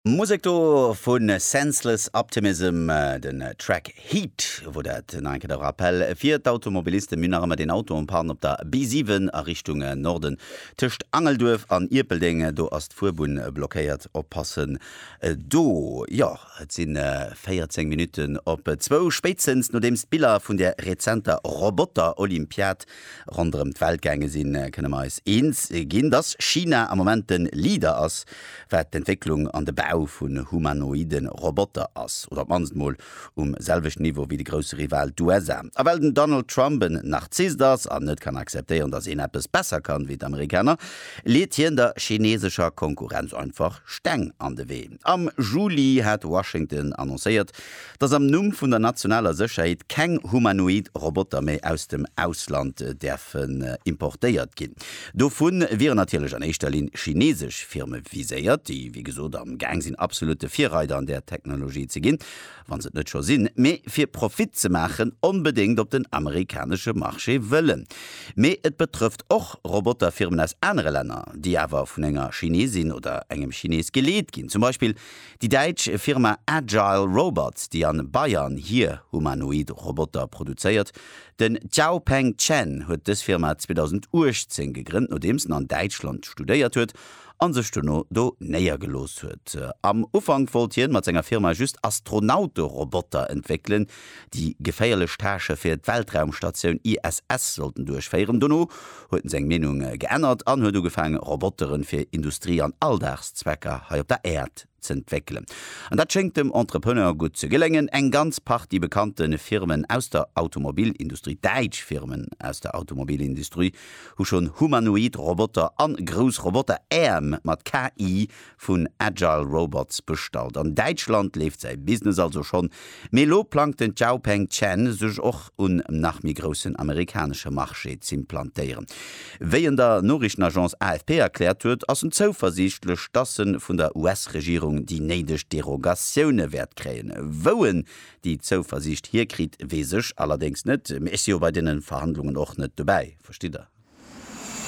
Musek do vun Senseless Optimism, den Track Heat, wou dat nach eng Kéier de Rappell fir d'Automobilisten, mir nach ëmmer deen Auto en panne op der B7 a Richtung Norden tëscht Angelduerf an Ierpeldeng, do ass d'Fuerbunn blockéiert, oppassen do. Jo, et si 14 Minutten op zwou, spéitstens nodeems d'Biller vun der rezenter Roboter-Olympiad Ronderëm d'Welt gaange sinn, kënne mer eis eens ginn, dass China am Moment de Leader ass, wat d'Entwécklung an de Bau vu humanoide Roboter ass, oder op d'mannst mol um selwechten Niveau wéi de grousse Rival, d'USA. A well den Donald Trump en Narzisst ass an net kann akzeptéieren, dass een eppes besser kann wéi d'Amerikaner, leet hien der chinesescher Konkurrenz einfach Steng an de Wee. Am Juli hat Washington annoncéiert, dass am Numm vun der nationaler Sécherheet keng humanoid Roboter méi aus dem Ausland däerfen importéiert ginn. Dovu wieren natierlech an éischter Linn chinesesch Firme viséiert, déi wéi gesot am Gaang sinn absolutte Virreider an där Technologie ze ginn, wa se et net scho sinn, mee fir Profit ze maachen onbedéngt op den amerikanesche Marché wëllen. Mee et betrëfft och Roboterfirmen aus anere Länner, déi awer vun enger Chinesin oder engem Chines geleet ginn, zum Beispill Déi däitsch Firma Agile Robots, déi a Bayern hier humanoid Roboter produzéiert. Den Xiaopeng Chen huet dës Firma 2018 gegrënnt, nodeems en an Däitschland studéiert huet a sech dono do néiergelooss huet. Am Ufank wollt hien mat senger Firma just Astronauteroboter entwéckelen, déi geféierlech Tâchë fir d'Weltraumstatioun ISS sollten duerchféieren. Dono huet en seng Meenung geännert an huet ugefaange Roboteren fir Industrie an Alldagszwecker hei op der Äerd z'entwéckelen. An dat schéngt dem Entrepreneur gutt ze geléngen. Eng ganz Partie bekannte Firmen aus der Automobilindustrie, däitsch Firmen aus der Automobilindustrie, hu schonn humanoid Roboter an grouss Roboter-Äerm mat KI vun Agile Robots bestallt. An Däitschland leeft säi Business also schonn, mee elo plangt den Xiaopeng Chen sech och un nach méi groussen amerikanesche Marché z'implantéieren. Wéi en der Noriichtenagence AFP erkläert huet, ass en zouversiichtlech, dass e vun der US-Regierung déi néideg Derogatioune wäert kréien. Wou en déi Zouversiicht hierkritt, weess ech allerdéngs net, mee ech si jo bei deene Verhandlungen och net dobäi, verstitt Der.